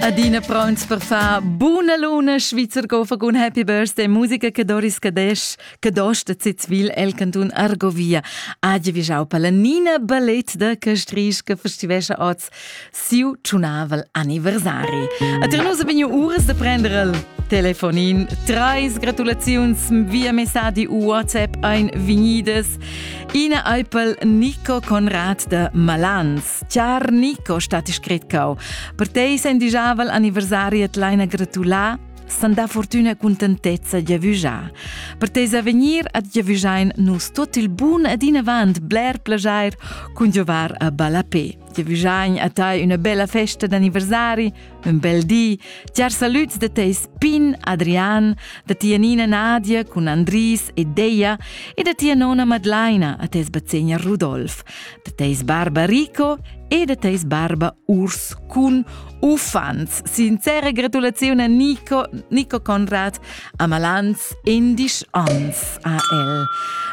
Adina pronts per far buna luna Schweizer go un Happy Birthday musica che Doris Cadesch che dosta Zitzwil el cantun Argovia. Age vi jau per la Nina Ballet da Castrisch che festivesce oz siu tsunavel anniversari. A dir nus abignu uras da prenderel telefonin. Treis gratulaziuns via messadi u WhatsApp ein vinidas. Ina Eupel Nico Conrad de Malans. Star Nico stati scrit cau. Per tei sein dijavel anniversari et leina gratulà, san da fortuna contentezza giavüjà. Per teis avegnir ad giavügjain nus tot il bun ed inavant bler plagiair cun giovar a ballapé. Giavügjain a tai üna bella festa d'anniversari, Un bel di, tiar salüds da teis pin Adrian, da tia nina Nadia cun Andris e Deia e da tia nona Madlaina a teis bazegner Rudolf, da teis barba Rico e da teis barba Urs cun uffants. Sincera gratulazione a Nico, Nico Conrad a Malans endisch ans a el.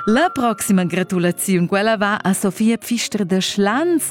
La proxima gratulaziun quella va a Sofia Pfister de Schlanz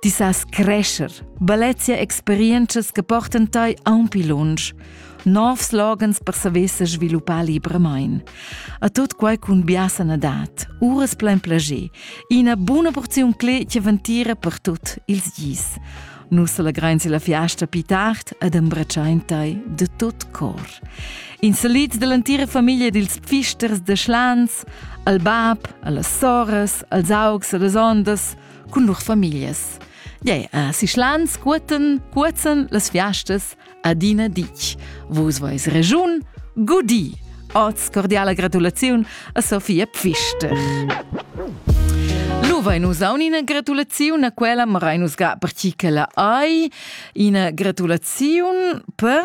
Ti sas crescher, bellezia experientschas che portan tai aunc pli lunsch. Novs slogans per saver se sviluppar libramain. A tut quai cun bia sanadad, uras plein plager, ina buna porziun clé che ventira per tut ils gis. Nus allegrain la fiasta più tard ed embrecciain tai de tot cor. In salits dell'antira famiglia dils pfisters de Schlans, al bab, alle soras, als augs e les ondas, cun lur famiglias. Gei, a Sischlan scuoten, cuozzen las fiastas adina ditg. Vus vois regiun, gudi! Oz cordiala gratulaziun a Sofia Pfister. Lu vein nus aun ina gratulaziun a quella, ma rein nus ga per chi che la ai. Ina gratulaziun per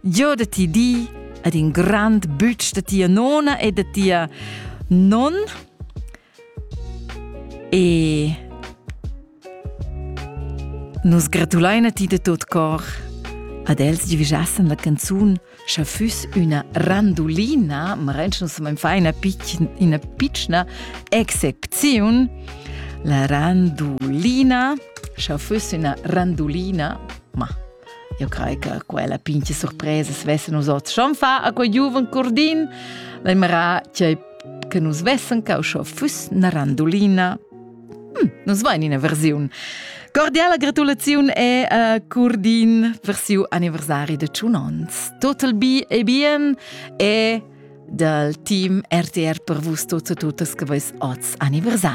Giò da ti di ed in grand bütsch da tia nona e da tia non e Nus gratulain a ti da tot cor ad els giuvisassan la canzun scha füss üna randulina, ma renschens am fa ina, pic, ina pitschna excepziun. La randulina, scha füss üna randulina, ma Eu crei che quella pincha surpresa svessa nus hoz schon fa a quei giuven cordin, la mera che che nus vessen cau scho füss na randolina. Hm, nus vain ina versiun. Cordiala gratulaziun e a uh, Curdin per siu anniversari de 100 ans. Total bi e bien e dal team RTR per vus tuts e tutas che vais oz anniversari.